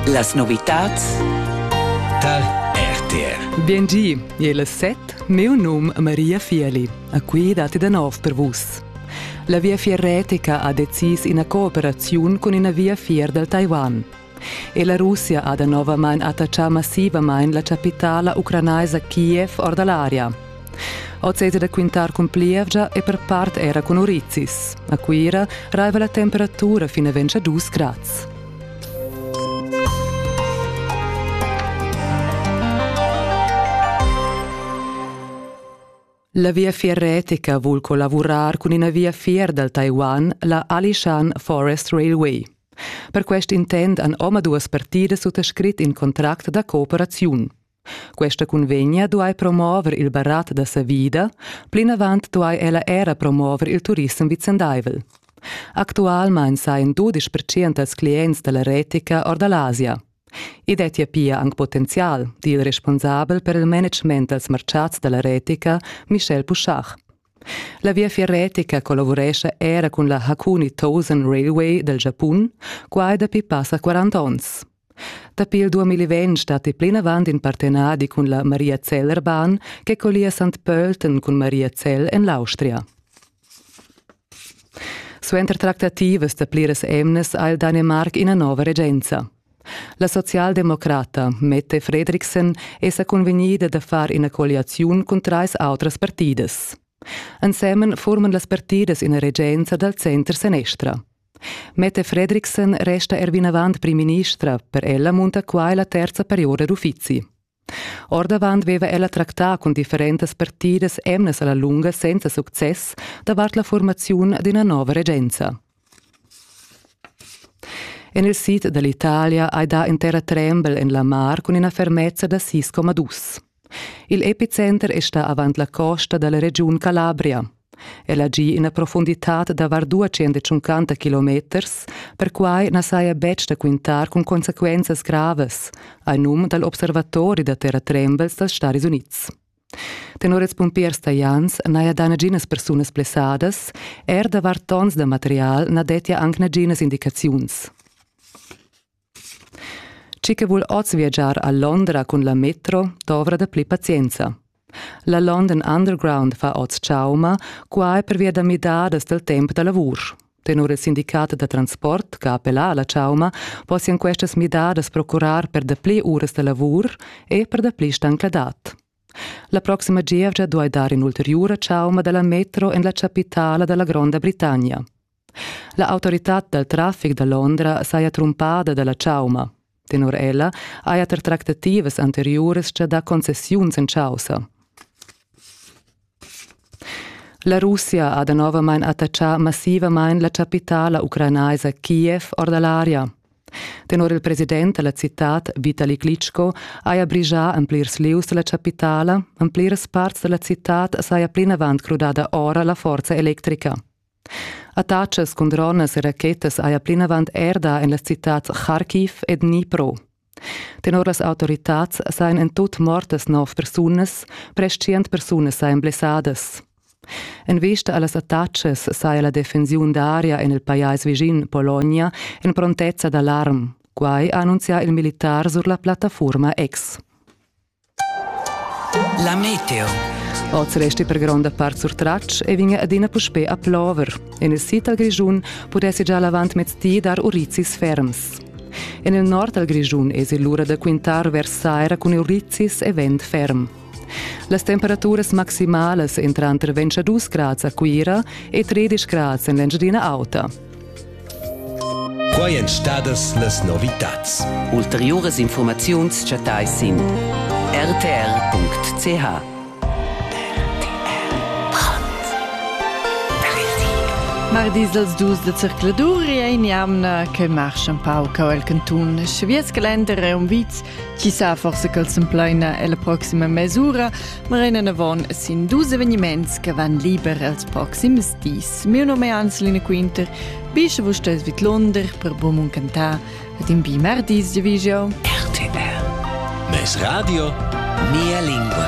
Las novitads tar RTR. Biengi, il set, meu num Maria Fieli. A qui dati da nov per vus. La Viafier Retica ha decis ina cooperaziun cun ina viafier dal Taiwan. E la Russia ha da novamain attachà massivamain la chapitala ucranaisa Kiev or da l'aria. Oz è da quintar cun plievgia e per part era cun urizis. A Cuira raiva la temperatura fin a 22 grads. La viafier retica vul collavurar cun ina viafier dal Taiwan, la Alishan Forest Railway. Per quest intent han omaduas partidas suttascrit in contract da cooperaziun. Questa cunvegna duai promover il barat da savida, plinavant duai ella era promover il turissem vicendaivel. Actualmain sajan dudisch percent dals clients da la retica or da l'Asia. I dettia pia anc potenzial, di il responsabel per il management dals martgads da la retica, Michel Puschach. La viafier retica collavurescha era cun la Hakuni Thousand Railway dal Giapun, quai dapi passa 40 onns. Dapi il 2020 dat ei plinavant in partenadi cun la Maria Zell Erban che collia Sant Pölten cun Maria Zell en l'Austria. Suenter tractativas da pliras emnas ha il Danemarc ina nova regenza. La socialdemocrata Mette Fredriksen è sa convegnida da far ina colliaziun cun trais autras partidas. Ensemen forman las partidas ina regenza dal center-senestra. Mette Fredriksen resta er vinavant primministra, per ella munta quai la terza periora d'uffizi. Ordavant veva ella tractà cun differentas partidas emnas alla lunga senza success davart la formaziun d'ina nova regenza. En il sid dall'Italia hai dà in terra trembel en la mar cun ina fermezza da 6,2. Il epicenter è stà avant la costa da la regiun Calabria. El ha gì ina profunditad da var 250 kilometers, perquai na saja betg da quintar cun consequenzas gravas, a num dal observatori da terratrembels dals Stadis Unids. Tenor ils pumpiers talians n'haja dà naginas persunas blessadas, er da var tons da material na dettia anc naginas indicaziuns. Chi che vul oz viagiar a Londra cun la metro dovra dapli pazienza. La London Underground fa oz chauma, quai pervia da midadas dal temp da lavur. Tenor il sindicat da transport, che appella alla chauma, possian questas midadas procurar per dapli uras da lavur e per dapli stancladad. La proxima gievgia duai dar in'ulteriura chauma dalla metro en la chapitala dalla Gronda Britannia. La autoritad dal traffic da Londra saja trumpada da la chauma. Tenor ella haja ter tractativas anteriuras gia dà concessiuns en chaussa. La Russia ha danovamain attaccà massivamain la chapitala ucrainaisa Kiev or da l'aria. Tenor il president da la citad Vitali Klitschko haja brigià en plirs lieus da la chapitala, en pliras parts da la citad saja plinavant crudada ora la forza electrica. Attachas cun dronas e rachetas haja plinavant er dà en las citads Kharkiv e Dnipro. Tenor las autoritads sajan en tut mortas nov persunas, prest tschient persunas sajan blessadas. En vista a las attachas saja la defensiun d'aria en il pajais vischin, Pologna, en prontezza d'alarm. Quai ha annunzià il militar sur la plattafurma X. La meteo. Oz resti per gronda part surtratg e vegn adina puspè a plover. En il sid dal Grischun pudessi già l'avantmezdi dar urizis ferms. En il nord dal Grischun èsi l'ura da quintar vers saira cun urizis e vent ferm. Las temperaturas maximalas entran tranter 22 grads a Cuira e 13 grads en l'Engiadina Auta. Quai èn stadas las novitads. Ulteriuras infurmaziuns chattai sin rtr.ch. Mardis als dus da circladur ein jamna che marsch un pau cau el cantun. Svies calender è un viz chi sa forse cal s'empleina la proxima mesura, ma renan avon sin dus eveniments che van liber els proxims dis. miu nome è Hans Lünequinter, bisce vos stes vidlonder per bom cantar et in bi mardis de vigio. RTR. Mes radio, mia lingua.